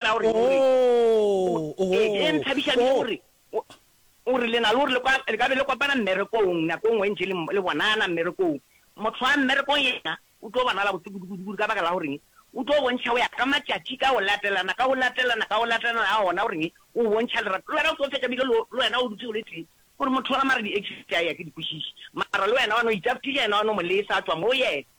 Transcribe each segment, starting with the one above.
Tla o re, o re, o, Oh, e, e nthabiša bjang oh. gore, o, o re le na le gore le kwa, le ka be le kopana mmerekong, nako e nngwe e ntši le, le bonana mmerekong. Motho wa mmerekong yena o tlo bonala botse kudu, kudu, kudu, ka baka la gore eng? O tlo bontšha go ya ka matšatši ka go latelana, ka go latelana, ka go latelana ga ona gore eng? O bontšha lerato. Le wena o tlo fetša bile lo, le wena o dutše o le tee, gore motho wa mara di-exit a ya ke di kwešiše, mara le wena wa no itaptiša yena wa no mo lesa a tšwa mo go yena.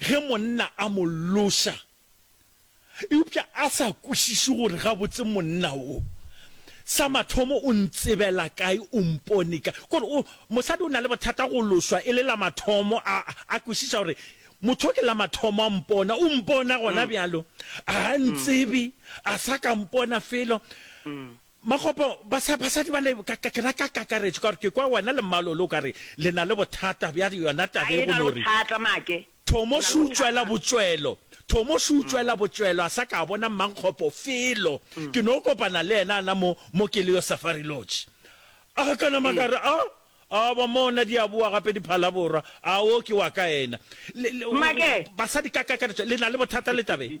ge monna a mo loša eupša a sa kwešiše gore gabotse monna wo sa mathomo o ntsebela kae, o mpone kae. Kore o, mosadi o na le bothata go lošwa e le la mathomo, a, a kwešiša gore motho wo ke la mathomo a mpona, o mpona gona bjalo, ga a ntsebe, a sa ka mpona felo. Makgopo, basa, basadi bale, ka, ka, ke na ka kakaretšo, ka gore ke kwa wena le mmalo ole o ka re le na le bothata bja yona taba ye, go no re, Thomo se utšwela botšwelo, Thomo se utšwela botšwelo, a sa ka a bona Mmankgopo felo. Ke no kopana le yena a na mo, mo ke le yo Safari Lodge. A ka nama ka re, Aa, aa, ba mona di a boa gape diphalaborwa, aa, wo ke wa ka yena. Le, le, basadi ka kakaretšo le na le bothata le taba ye.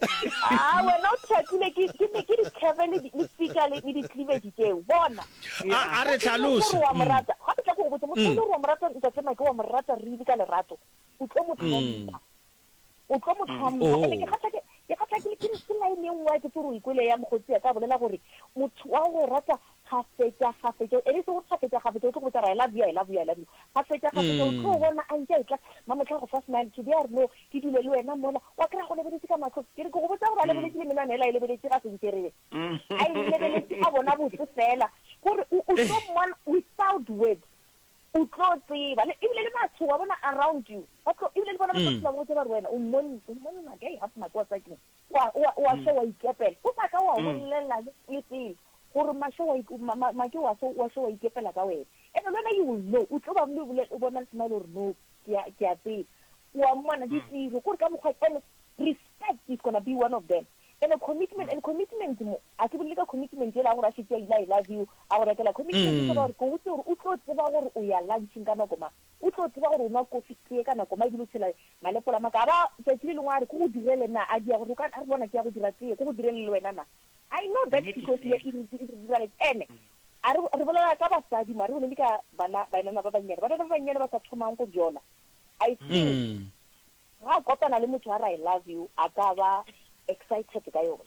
Aa, wena o thatile ke ke ke dikheve le di- le pika le le di-cleavage tseo. Bona. A a re Ga ke nyake hlalose. gore wa mo Mm. rata. Ga ke tla ke go botse, motho e le gore wa mo rata ntate Make, wa mo rata really ka lerato, o tlo mo tlhompha. O tlo mo tlhompha. Oh. And-e ke gatlake- ke gatlakile ke ke line e nngwe ya ke tse gore o e kwele ya mokgotsi ya ka bolela gore motho wa go rata Kgafetšakgafetša, e be e se gore kgafetšakgafetša o tlo go botša re, I love you, I love you, I love you. Kgafetšakgafetša o tlo bona a ntše a etla, mma mohla a go fa smile, today a re no, ke dule le wena mola, wa kry-a a go lebeletše ka mahlong, ke re ke go botša gore a lebeletše le menwana yela e lebeletše ga se nterebe, a e lebeletše a bona botse fela, gore o o tlo mmona without words, o tlo tseba, le ebile le batho wa bona around you ba tlo, ebile le bona ba tlo tshela ba go botša ba re wena o mmon, o mmonna ka, hee, half nako wa sa ke. wa, wa, wa mm. se wa ikepela. O sa ka wa mm. bolelela le, le pele gore mashe wa, ma, ma, ma ke wa se, wa se wa ikepela ka wena. And le wena you will know. O tlo ba mo bole, o bona le smile gore no, ke a, ke a tseba. Wa mmona mm. ditiro, gore ka mokgwa, and respect is gonna be one of them. And a commitment, mm. and commitment mo, a se bolele ka commitment e la gore a se ke a ila I love you, a go rekela commitment, mm. gore go tse gore o tlo tseba gore o ya lunching ka nako mang. O tlo tseba gore o nwa kofi tee ka nako ma ebile o tshela malepola ma ka. A ba tšatši le lengwe a re ke go direle na? A dia gore o ka re bona ke ya go dira tee, ke go direle le wena na? I know that because ye e re dira le ene. A re re bolela ka basadi mo, a re bolele ka bana baenana ba bannyane. Bana ba bannyane ba sa thomang go jola. I think ga a kopana le motho a re I love you a ka ba excited ka yona.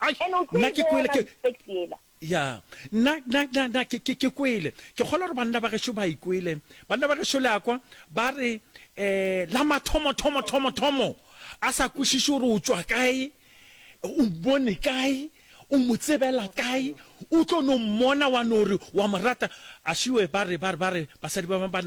Ai, And o tlo nna e ke kwele, bona ke, respect yela. ya, nna, nna, nna, nna ke, ke, ke kwele. Ke kgolwa gore banna ba gešo ba e kwele. Banna ba gešo le a kwa, ba re, eh, la mathomo, thomo, thomo, thomo, a sa kwešiše gore o tšwa kae, o mmone kae, o mo tsebela kae, o tlo no mmona wa no re wa mo rata. Ašiwe, ba re, ba re, ba re, basadi ba bangwe ba,